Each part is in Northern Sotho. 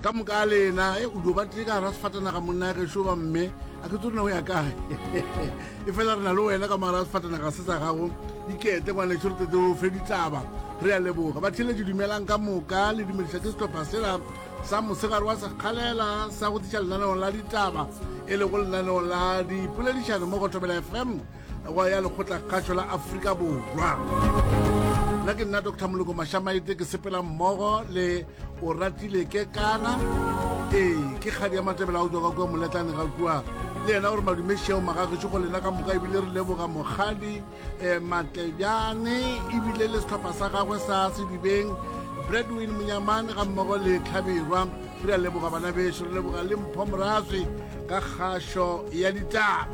ka moka a lena e o dio ba tle ka ra sefatanaga monna ya gešo ba mme a ke tsone o ya kae e fela re na le wena ka mogara sefatanaga se sa gago dikete ngwane tšho re tete o fe ditlaba re ya leboga ba theletše dumelang ka moka le dumediša ke setlhopha sela sa mosegare wa sekgalela sa go tliša lenaneong la ditaba e le go lenaneong la dipoledišano mo go thobela fm wa ya lekgotlakgašo la afrika borwa nna ke nna dr moloko mašamaete ke sepela mmogo le o ratile ke kana ee ke kgadi ya matebela o tswa ka kua moletlane ga kua le yena gore madumešeo magagešo go lena ka moka ebile re leboga mokgadi um eh, matlejane ebile le setlhopha sa gagwe sa sedibeng bradwin monyamane ga mmogo le tlhabirwa re a leboga bana beso re leboga le mpho morazwi ka kgašo ya ditaba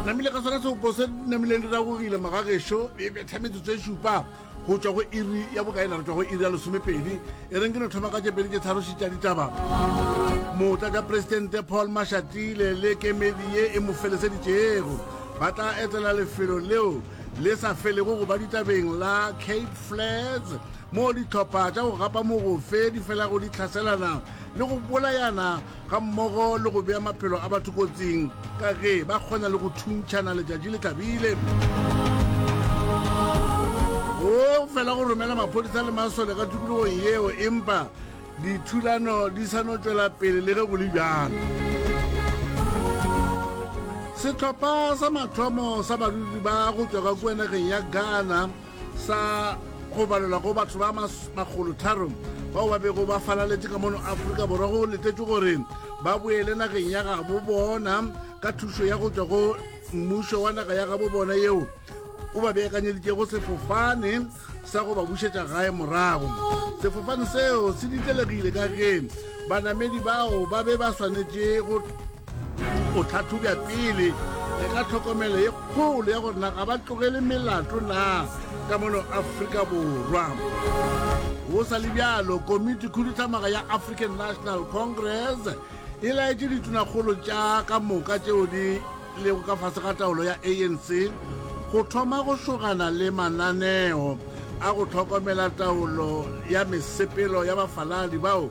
namile ka sona seopo se namileng di ragogile magagešo e betha metsotso e šupa go tšwa go iri ya bokaena re tšwa go iri ya lesomepedi e reng ke no thoma ka tšepedi tše tharoši tša ditaba motla ja presidente paul mashatile le kemedi ye e mo feleseditšego ba tla etela lefelo leo le sa felego go ba ditabeng la cape flats moo dihlopha tša go gapa mogofe di felago di hlaselana le go bolayana ga mmogo le go bea maphelo a batho kotsing ka ge ba kgona le go thuntšhana letšatši le tlabile. Go fela go romela maphodisa le masole ka tikologong yeo empa dithulano di sa no tšwela pele le ge go le bjalo. Sehlopha sa mathomo sa badudi ba go tšwa ka kua nageng ya Ghana sa go balelwa go batho ba makgolotharo bao ba bego ba falaletše ka mono afrika borwa go letetšwe gore ba boele nageng ya gabo bona ka thušo ya go tšwa go mmušo wa naga ya gabo bona yeo o ba beakanyeditšego sefofane sa go ba bušetša gae morago sefofane seo se ditlelegile ka ge banamedi bao ba be ba swanetše go O tlhatlhobja pele le ka tlhokomelo ye kgolo ya gore na ga ba tlogele melato na ka mono Afrika Borwa. Go sa le bjalo, komiti khuduthamaga ya African National Congress e laetše ditunakgolo tša ka moka tšeo di lego ka fase ga taolo ya ANC go thoma go šogana le mananeo a go tlhokomela taolo ya mesepelo ya bafaladi bao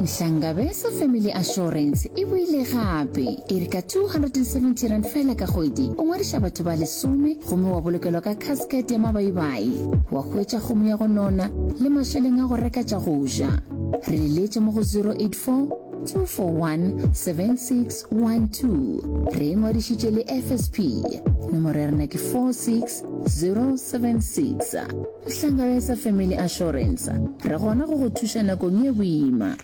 Nhlangabeza Family Assurance e boile gape e re ka R270 fela ka kgwedi o ngwadiša batho ba lesome gomme wa bolokelwa ka casket ya mabaibai, wa hwetša kgomo ya go nona le mašeleng a go reka tša go ja. Re le leetše mo go 084-241-7612. Re e ngwadišitše le FSP. Nomoro ya rena ke 46076. Hlangana sa Family Assurance, re gona go go thuša nakong ye boima.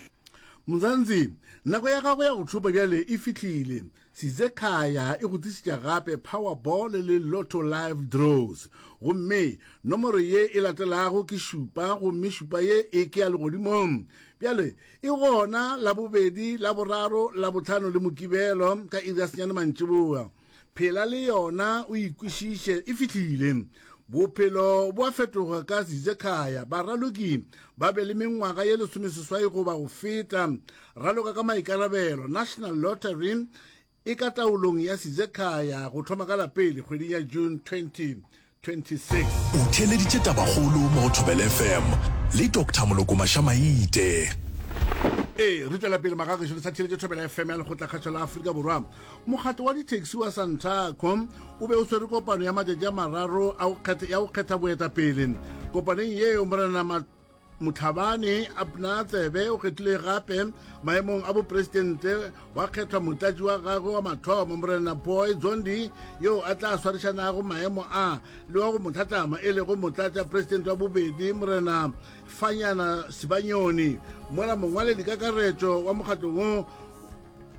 Mzansi, nako ya gago ya go tšhopa bjale e fihlile. Sizekhaya e go tlišitša gape Powerball le Lotto Live Draws. Gomme nomoro ye e latelago ke šupa gomme šupa ye e ke ya legodimong. Bjale e gona Labobedi, Laboraro, Labohlano le Mokibelo ka iri ya senyane mantšiboa. Phela le yona o e kwešiše. E fihlile. Bophelo bo a fetoga ka Zizekhaya. Baraloki ba be le mengwaga ye lesomeseswai goba go feta. Raloka ka maikarabelo. National Lottery e ka taolong ya Zizekhaya go thoma ka la pele kgweding ya June 20. 26. O theeleditše tabakgolo mo go Thobela FM le Doctor Moloko Mašamaite. Ee, re tšwela pele magagešu re sa theeletše Thobela FM ya lekgotlakgašo la Afrika Borwa. Mokgatlo wa ditaxi wa Santaco o be o swere kopano ya matšatši a mararo ya go kgetha boetapele. Kopaneng yeo Morenana motlhabane abna tsebe o kgethile gape maemong a boporesidente wa kgethwa motlatši wa gagwe wa mathomo morena boy zondi yo a tla swarišanago maemo a le wa go mo tlhatlama e lego motlatša poresidente wa bobedi morena fanyana sibanyoni mola mongwaledi kakaretšo wa mokgatlo wo